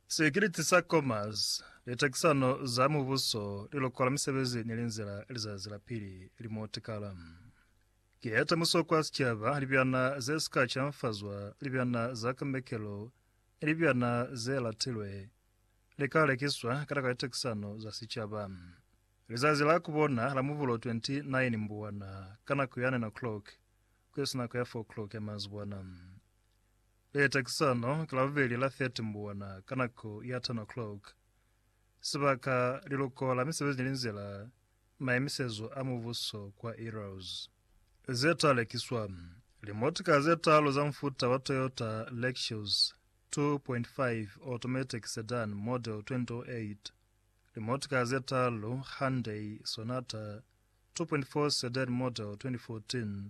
Sikiliti sa Commerce, Litekisano za Mubuso li lokola misebezi ni linzila lizazi la pili li mo tikala. Ki ye temuso kwa sicaba, libyana ze si ka canfazwa, libyana za kambekelo, ni libyana ze latilwe li ka lekiswa kana ka litekisano za sicaba. Lizazi la ku bona la Mubulo 29 mbuwana ka nako ya 9 o'clock ku isi nako ya 4 o'clock ya manzibwana. Leta ki sano ki la bubeli la 30 mbuona ka nako ya 10 o'clock. Sibaka, Liluko la Misebezi ni Linzila, Maimisezo a Mubuso kwa Eros. Ze ta lekiswa, Limotika ze talu za mufuta wa Toyota Lexus 2.5 Automatic Sedan Model 2008, limotika ze talu Hyundai Sonata 2.4 Sedan Model 2014,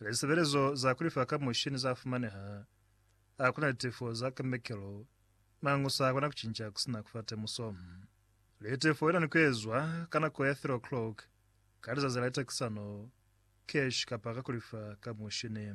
Lisebelezo za kulifa ka mushini za fumaneha. A kuna litefo za kambekelo, mangu sa kona kucinca kusina kufa temuso. Litefo ina ni kuezwa ka nako ya 3 o'clock ka lizazi la litakisano, cash kapa ka kulifa ka mushini.